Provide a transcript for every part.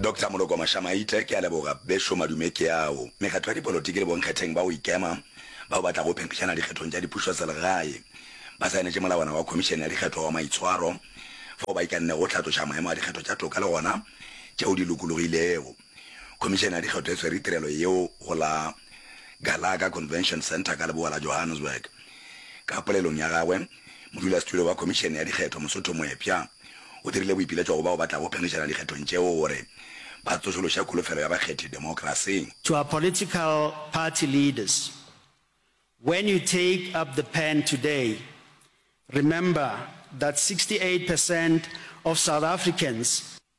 Doctor Moloko Mashamaite, ke a leboga. Bešo madume ke ao. Mekgatlo ya dipolotiki le bonkgetheng ba go ikema bao ba tlago phempišana dikgethong tša dipušoselegae ba saenetše molawana wa Khomišene ya Dikgetho wa maitshwaro fao ba ikannego go hlatloša maemo a dikgetho tša toka le gona tšeo di lokologilego. Khomišene ya Dikgetho e swere tirelo yeo go la Gallagher Convention Centre ka leboa la Johannesburg. Ka polelong ya gagwe, modulasetulo wa Khomišene ya Dikgetho, Mosotho Moepša, o dirile boipiletšo go bao ba tlago phenkgišana dikgethong tšeo gore ba tsošološe kholofelo ya bakgethi demokrasing. To our political party leaders, when you take up the pen today, remember that 68 percent of South Africans,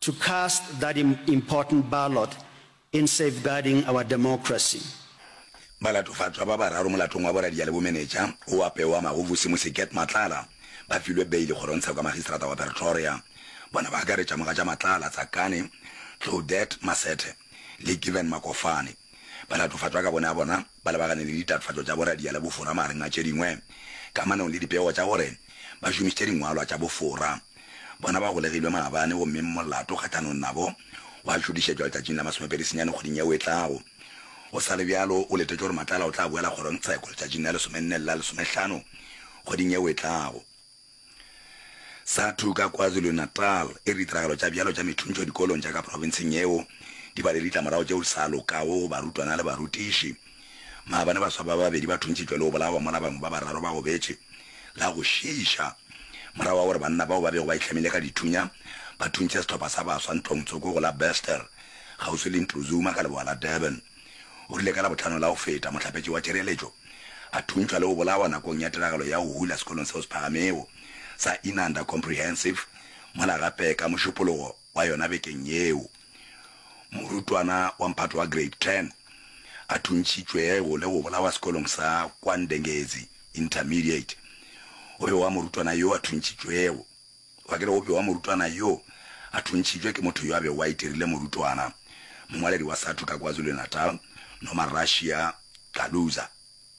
to cast that important ballot in safeguarding our democracy. Balatofatšwa ba bararo molatong wa boradia le bomenetša o apewa magovu se Mosiket Matlala ba filwe beile kgorongtseko ya magistrata wa Pretoria. Bona ba akaretša mogatša Matlala, Tsakane, Claudette Masethe le Given Makofane. Balatofatšwa ka bonea bona ba lebagane le ditatofatšo tša boradia le bofora magareng a tše dingwe kamanong le dipego tša gore ba šomišitše dingwalwa tša bofora. Bona ba golegilwe maabane gomme molato kgahlanong nabo wa tšodišetšwa letšatšing la masomepedi senyane kgweding yeo e tlago. Go sa le bjalo, o letetše gore Matlala o tla boela kgorong tsheko letšatšing la lesomenne le la lesomehlano kgweding yeo e tlago. Sathu ka KwaZulu-Natal e re ditiragalo tša bjalo tša methuntšo dikolong tša ka profenseng yeo di ba le ditlamorago tšeo di sa lokago go barutwana le barutiši. Maabane baswa ba babedi ba thuntšitšwe le go bolawa mola bangwe ba bararo ba gobetše. La go šiiša, morago ga gore banna bao ba bego ba itlhamile ka dithunya ba thuntše sehlopha sa baswa ntlong tsoko go la Bester kgauswi le Ntuzuma ka leboa la Durban, o rile ka Labohlano la go feta mohlapetši wa tšireletšo a thuntšwa le go bolawa nakong ya tiragalo ya go hula sekolong seo se phagamego sa Inanda Comprehensive mola gape ka Mošupologo. wa yona bekeng yeo. Morutwana wa mphato wa Grade 10 a thuntšitšwe go le go bolawa sekolong sa kwa Ndengezi Intermediate. Go bewa morutwana yo a thuntšitšwego. Kwa ke re go bewa morutwana yo a thuntšitšwe ke motho yo a bego a itirile morutwana, mongwaledi wa Sathu ka KwaZulu-Natal, Nomarassia Caluza.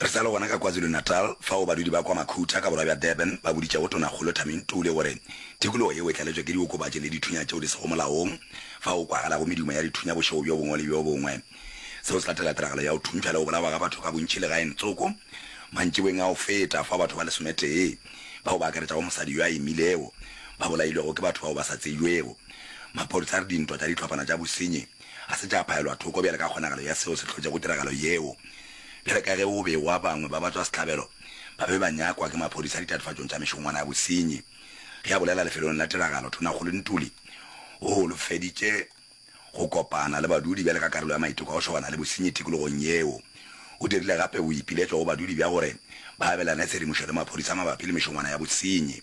Re sa le gona ka KwaZulu-Natal fao badudi ba kwa Makhutha ka borwa bja Durban ba boditšego Tonakgolo Thami Ntuli gore tikologo yeo e tlaletšwe ke diokobatši le dithunya tšeo di sego molaong fao go kwagalago medumo ya dithunya bošego bjo bongwe le bjo bongwe. Seo se latela tiragalo ya go thuntšha le go bolawa ga batho ka bontši legaeng Tsoko mantšiboeng a go feta fao batho ba lesometee, bao ba akaretšago mosadi yo a imilego, ba bolailwego ke batho bao ba sa tsebjwego. Maphodisa a re dintwa tša dihlopana tša bosenyi, ga se tša phaelwa thoko bjale ka kgonagalo ya seo se hlotšego tiragalo yeo. Bjale ka ge o be wa bangwe ba batswasehlabelo ba be ba nyakwa ke maphodisa ditatofatšong tša mešongwana ya bosenyi, ge a bolela lefelong la tiragalo, Thonakgolo Ntuli o holofeditše go kopana le badudi bjale ka karolo ya maiteko a go šobana le bosenyi tikologong yeo. O dirile gape boipiletšo go badudi bja gore ba abelane tshedimošo le maphodisa mabapi le mešongwana ya bosenyi.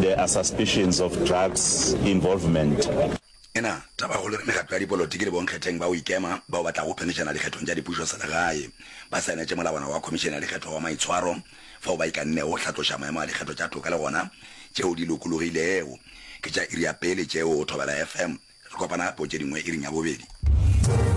There are suspicions of drugs involvement. Ena tabakgolo re mekgatlo ya dipolotiki le bonkgetheng ba go ikema bao ba tlago khomišena ya dikgethong tša dipušoselegae ba saenetše molawana wa khomišene ya dikgetho wa maitshwaro fao ba ikannego go hlatloša maemo a dikgetho tša toka le gona tšeo di lokologilego. Ke tša iri ya pele tšeo. Thobela FM. Re kopana gape o tše dingwe iring ya bobedi.